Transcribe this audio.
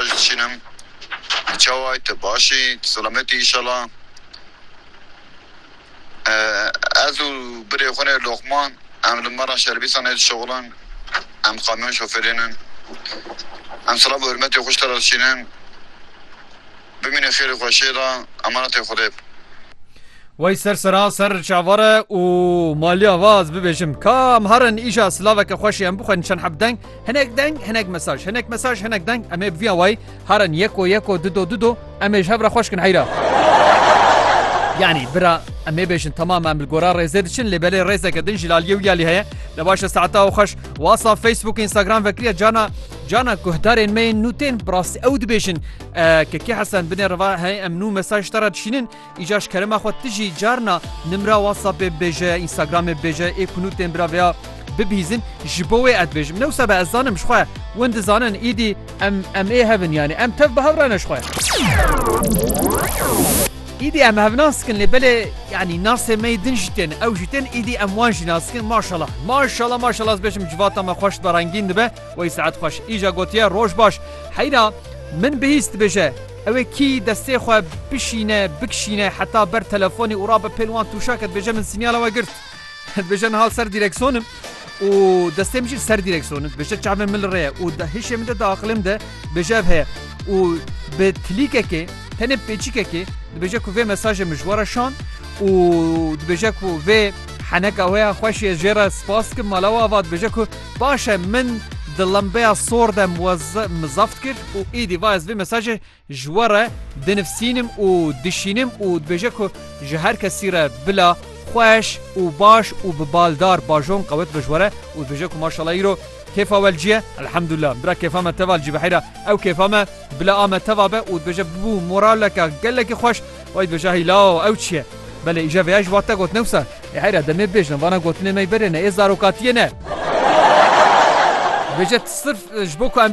Baş diçîn im tu çawa yî tu baş î tu selamet î înşala ez û birê xwe nê Lokman em li mera şerbîsan nê dişuxulin em kamyon şofêrên in em silav û hurmetê xwe ji te re diçînin bimîne xêrê xwe şê da emanetê xwedê bi. Wey ser sera ser çavare û maliya va ez bibêjim ka em herin îşa silaveke xweşê em bixwerin çend heb deng. Hinek deng, hinek mesaj, hinek mesaj, hinek deng, em ê bi vî awayî harin yeko yeko, dido dido, em ê ji hev re xweş kin heyra. Yanî bira em ê bêjin temam em li gora rêzê diçin lê belê rêzeke din jî laliyê wî alî heye li başe saeta û xweş wasa Facebook Instagram vekiriye cana cana guhdarên me yên nûtên bi rastî ew dibêjin ke kê hesen binê riva hey em nû mesaj te re dişînin Îcar ji kerema xwe tu jî carna nimra WhatsAppê bêje ya Instagramê bêje ê ku nûtên bira vêya bibihîzin ji bo wê ez dibêjim. Ne wisa be ez zanim ji xwe win dizanin îdî em em ê hev in yanî em tev bi hev re ne ji xwe. Îdî em hev nas dikin lê belê yanî nasê me yê din jî tên ew jî tên îdî em wan jî nas dikin maşala maşala maşala ez bêjim civata me xweş dibe rengîn dibe wey saet xweş îja gotiye roj baş heyna min bihîst dibêje Ew ê kî destê xwe bişîne, bikişîne heta ber telefonê û rabe pêl wan tûşa ke dibêje min sînyala we girt. Dibêje niha li ser dîrekson im û destê min jî li ser dîrekson in. Dibêje çavên min li rê ye û di hişê min de, di aqilê min de dibêje ev heye û bi tilîkekê, tenê bi pêçîkekê dibêje ku vê mesajê min ji we re şand û dibêje ku vê heneka wê ya xweşê ez jê re spas dikim. Mala we ava dibêje ku. Baş e min di lembeya sor de mizaft kir û êdî va ez vê mesajê ji we re dinivsînim û dişînim û dibêje ku ji her kesî re bila xweş û baş û bi baldar bajon qewet be ji we re û dibêje ku maşallah îro kêfa we li cî ye elhemdulillah bira kêfa me tev a li cî biheyra ew kêfa me Bila ame teva be û dibêje bû moraleke gelekî xweş. Wê dibêje hî la ew çi ye? Belê îje vêya jî wate got newsa. Ê heyra demê bibêjin vana gotinê me yê berê ne ê zarokatiyê ne. Dibêje sirf ji bo ku em.